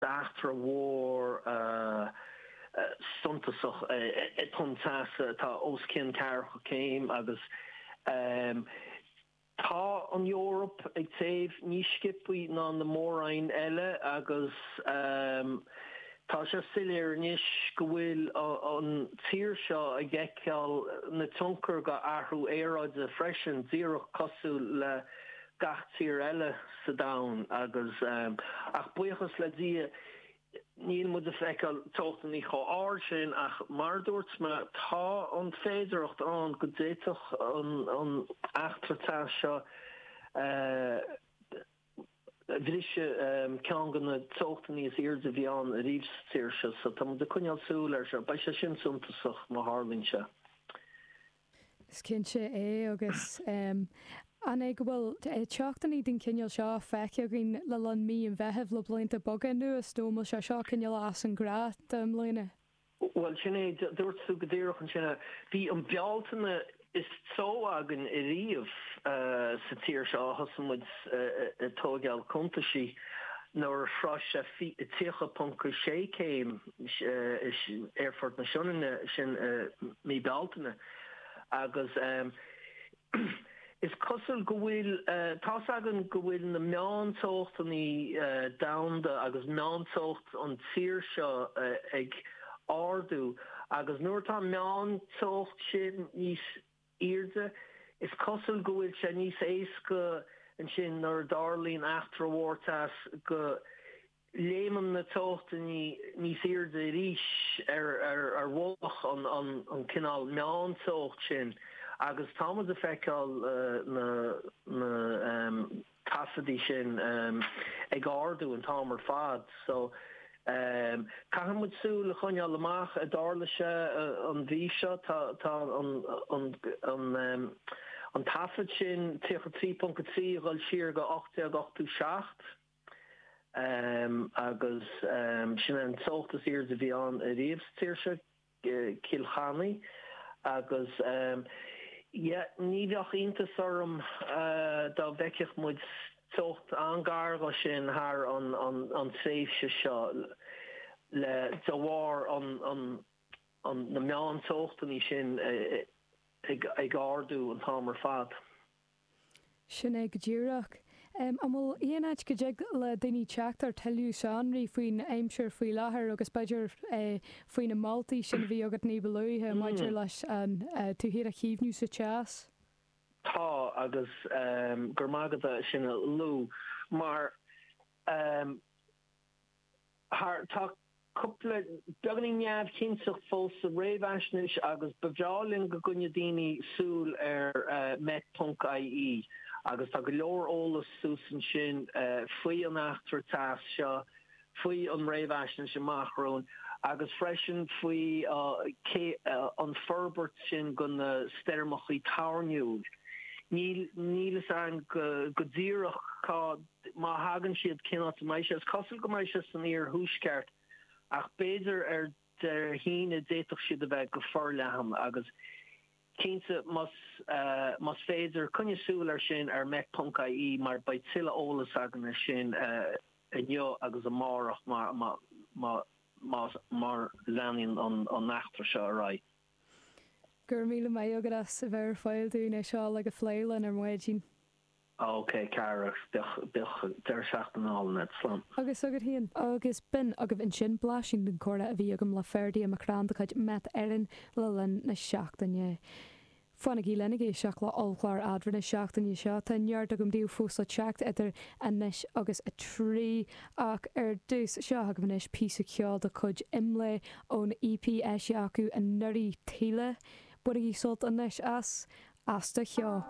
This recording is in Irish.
B'eachtra mhór suntasach é Tonn Teasa atá os cionn ceathracha céim agus tá an Eoraip ag téamh níos sciopthaí ná na mór-roinn eile agus tá sé soiléir anois go bhfuil an tír seo ag fheiceáil na tionchar dho athrú aeráide freisin, díreach cosúil le gach tír eile sa domhan agus ach buíochas le Dia níl muid ag feiceáil teochtannaí chomh ard sin ach mar a dúirt mé tá an féidearthacht ann go d'fhéadfadh an eachtra teas seo briseadh ceann dho na teochtannaí is airde a bhí ann ariamh sa tír seo so tá muid ag coinneáil súil ar seo beidh sé sin suntasach má tharlaíonn sé. Is cinnte é agus an é go bhfuil teochtannaí den chineál seo feicthe againn le linn mí an Mheithimh le blianta beaga anuas nó an bhfuil sé seo cineál as an ghnáth do i mbliana? Bhuel, sin é, dúirt tú go díreach ansin é. Bhí an Bealtaine is teo againn ariamh sa tír seo ó thosaigh muid ag tóigeáil cuntaisí nuair a shrois sé 30.6 céim Aerfort na Sionainne sin i mí Bealtaine agus is cosúil go bhfuil tá's againn go bhfuil na meánteochtannaí domhanda agus meánteocht an tír seo ag ardú agus nuair atá an meánteocht sin níos airde is cosúil go bhfuil sé níos éasca ansin nuair a tharlaíonn eachtra mhór teas go léimeann na teochtaí níos airde arís ar mhullach an cineál meánteocht sin agus tá muid ag feiceáil na taifeadtaí sin ag ardú an t-am ar fad. So caithfidh muid súil a choinneáil amach an dtarlóidh sé an mhí seo. Tá an taifead sin 33.3 ag dul siar go 1887. Agus sin é an teocht is airde a bhí ann ariamh sa tír seo, Cill Chainnaigh. Agus yeah, ní bheadh iontas orm dá bhfeicfeadh muid teocht an-gar dhó sin thar an tréimhse seo le, de bharr na meán-teochtannaí sin ag ardú an t-am ar fad. Sin é go díreach. An bhfuil aon áit go dtig le daoine teacht ar tuilleadh sonraí faoin aimsir faoi láthair agus b'fhéidir faoi na moltaí sin a bhí agat ní ba luaithe maidir leis an tsábháilteacht a chaomhnú sa teas? Tá agus go raibh maith agat as sin a luadh mar. thar. Tá cúpla beagáinín neamhchinnteachta fós sa réamhaisnéis agus ba bhreá linn go gcoinneodh daoine súil ar Met.ie agus tá go leor eolas suas ansin faoi an eachtra teas seo, faoi an réamhaisnéis amach romhainn agus freisin faoin an forbairt sin de na stoirmeacha toirniúil. Níl fhios againn go díreach cá. Má thagann siad, cén áit a mbeidh siad? Is cosúil go mbeidh siad san iarthuaisceart ach b'fhéidir ar Dé hAoine d'fhéadfadh siad a bheith go forleathan agus cinnte más más féidir coinnigh súil ar sin ar Met.ie mar beidh tuilleadh eolas againn ar sin inniu agus amárach mar má más mar leanaíonn an eachtra seo ar aghaidh. Go raibh míle maith agat as a bheith ar fáil dúinn é seo ar fad a phlé linn ar maidin. OK ceart agus bíodh deireadh seachtaine álainn agat. Slán. Agus agat féin. Agus b'in agaibh ansin blaisín den chomhrá a bhí agam le Ferdia McCrann de chuid Met Éireann le linn na seachtaine. Fanaigí linn ag éisteacht le ollchlár Eadra na seachtaine seo. Tá neart agam daoibh fós le teacht idir anois agus a trí ach ar dtús. Seo agaibh anois píosa ceoil de chuid Imlé ón EP is déanaí acu anuraidh, Taoille. Bainigí sult anois as As do Cheo.